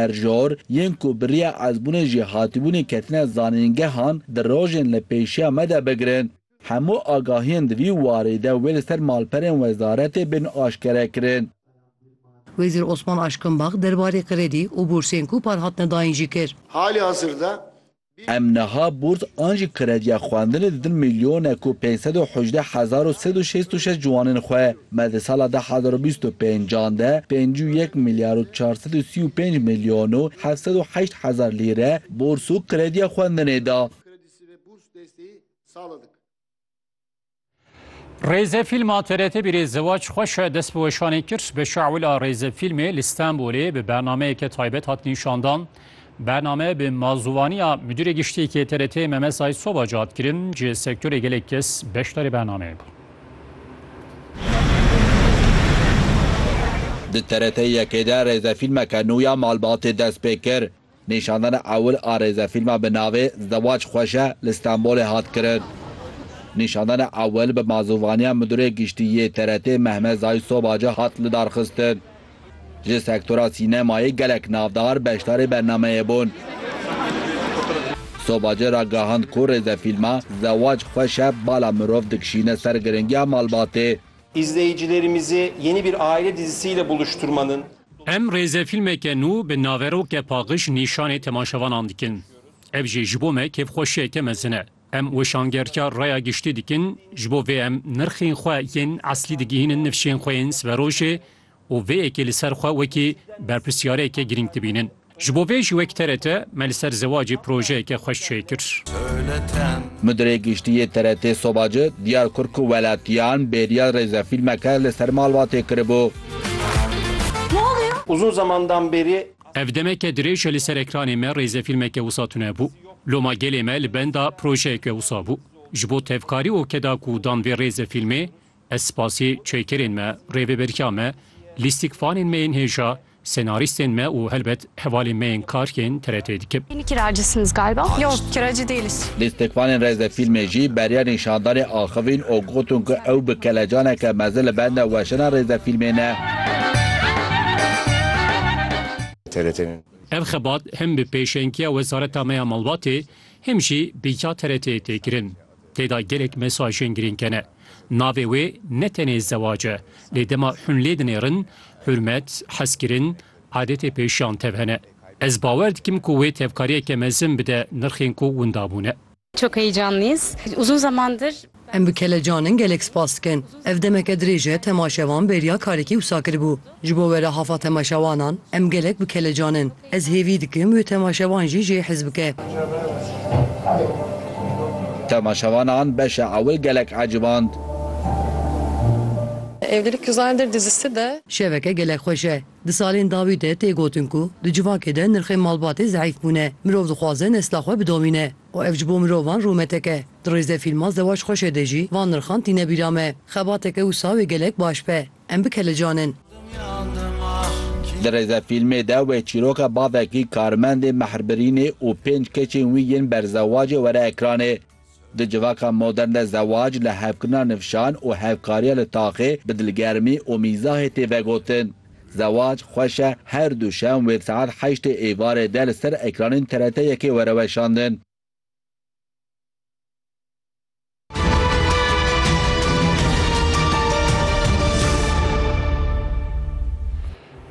Erjor, yên ku bi riya ezbûnê jî hatibûnê ketine zanîngehan, di rojên li pêşiya me de bigirin. Hemû agahiyên di vî warî de wê li ser malperên wezaretê bên aşkere kirin. Wezîr Osman Aşkinbax derbarê kredî û bûrsên ku par hatine dayîn jî kir. Halihazirda Em niha bûrs an jî krediya xwendinê didin milyonek û pênc sed û hejdeh hezar û sed û şêst û şeş ciwanên xwe. Me di sala du hezar û bîst û pênc an de pêncî û yek milyar û çar sed û sî û pênc milyon û heft sed û heşt hezar lîre bûrs û krediya xwendinê da. Rêzefîlma TRT bîrê Zewac xweş e dest bi weşanê kir. Bi şawila rêzefîlmê li Stenbolê bi bernameyeke taybet hat nîşandan. Bername bi mazûvaniya Midûrê Giştî yê TRT'ê Memes Aysobac hat kirin. Ji sektorê gelek kes beşdarê bernameyê bûn. Di TRT yekê de rêzefîlmeke nû ya Malbatê dest pê kir. Nîşandana ewil a rêzefîlma bi navê Zewac Xweş e li Stenbolê hat kirin. Nîşandana ewil bi mazûvaniya Midûrê Giştî yê TRT'ê Mehmet Zahî Sobaca hat lidarxistin. Ji sektora sînemayê gelek navdar beşdarî bernameyê bûn. Sobaca ragihand ku rêzefîlma Zewac Xweş e bala mirov dikişîne ser giringiya malbatê. İzleyicilerimizi yeni bir aile dizisiyle buluşturmanın. Em rêzefîlmeke nû bi naveroke Paqiş nîşanê temaşevanan dikin. Ev jî ji bo me kêfxweşiyeke mezin e. Em weşangerka raya giştî dikin, ji bo vê em nirxên xwe yên eslî digihînin nifşên xwe yên siberojê û vê yekê li ser xwe wekî berpirsyareyeke girîng dibînin. Ji bo vê jî wek TRT me li ser zewacê projeyeke xweş çê kir. Mudirê Giştî yê TRT soba ci diyar kir ku welatiyan bêriya rêzefîlmeke li ser malbatê kiribû. Uzun zamandan beri. Ev demeke dirêj e li ser ekranê me rêzefîlmeke wisa tune bû. Loma gelê me li benda projeyeke wisa bû. Ji bo tevkarî û keda ku dan vê rêzefîlmê, Ez spasî çêkerên me, rêveberiya me, lîstikvanên me yên hêja, senarîstên me û helbet hevalên me yên karg ên TRT'ê dikim. Lîstikvanên rêzefîlmê jî beriya nîşandanê axivîn û gotin ku ew bi kelecaneke mezin li benda weşana rêzefîlmê ne. Ev xebat hem bi pêşengiya wezareta me ya malbatê hem jî bi ya TRT'ê tê kirin. Tê de gelek mesajên girîng hene. Navê wê ne tenê zewac e, lê dema hûn lê dinêrin, hurmet, hezkirin, adetê pêşiyan tev hene. Ez bawer dikim ku wê tevkariyeke mezin bide nirxên ku winda bûne. Çok heyecanlıyız. Uzun zamandır. Em bi kelecan in gelek spas dikin. Ev demeke dirêj e temaşevan bêriya karekî wisa kiribû. Ji bo werehafa temaşewanan em gelek bi kelecan in. Ez hêvî dikim wê temaşevan jî jê hez bike. Temaşevanan beşa ewil gelek eciband. Evlilik yüz aydır dizisi de. Şeveke gelek xweş e. Di salên dawî de tê gotin ku di civakê de nirxên malbatê zeîf bûne. Mirov dixwaze nesla xwe bidomîne û ev ji bo mirovan rûmetek e. Di rêzefîlma Zewac Xweş e de jî van nirxan tîne bîra me. Xebateke wisa wê gelek baş be. Em bikelicanin. Di rêzefîlmê de wê çîroka bavekî, karmendê mehrbirînê û pênc keçên wî yên berzewacê were ekranê. Di civaka modern de zewac li hevkirina nifşan û hevkariya li taxê bi dilgermî û mîzahê tê vegotin. Zewac xweş e her duşem wê di saet heştê êvarê de li ser ekranên TRT yekê were weşandin.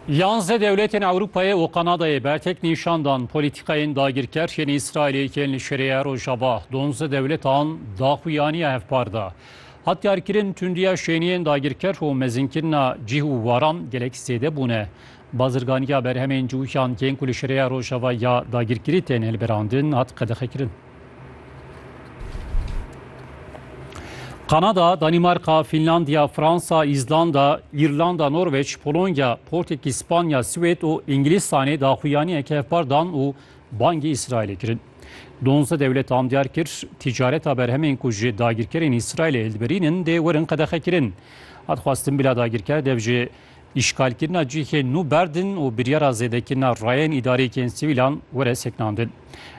Yanze dewletên Ewropayê û Kanadayê bertek nîşan dan polîtîkayên dagirker yên Îsraîlê yên li şirêya rojava donze dewletan daxuyaniya hevpar da. Hatkarkirin tundiya şêniyên dagirker û mezinkirina cih û waran gelek zêde bûne. Bazirganiya berhemên cûhan yên ku li şireya Rojava ya dagirkirî tên hilbirandin hat qedexekirin. Kanada, Danîmarka, Fînlandiya, Fransa, Îzlanda, Îrlanda, Norweç, Polonya, Portekîz, Spanya, Swêd û Îngilîstanê daxuyaniyek hevpar dan û bangî Îsraîlê kirin. Donze dewletan diyar kir tîcareta berhemên ku ji dagirkerên Îsraîlê hildiberînin dê werin qedexekirin. Hat xwestin bila dagirker dev ji Îşgalkirina cihên nû berdin û biryara zêdekirina rayên îdareyekên sivîlan were sekinandin.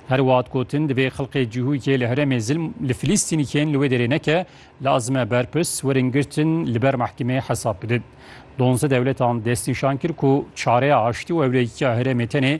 Her wiha digotin divê xelkê cihûkê li herêmê zilm li Filîstînî kên li wê derê neke, lazim e berpirs werin girtin li ber mehkemeyê hesab bidin. Donze dewletan destnîşan kir ku çareya aştî û hevlêkiya herêmê tenê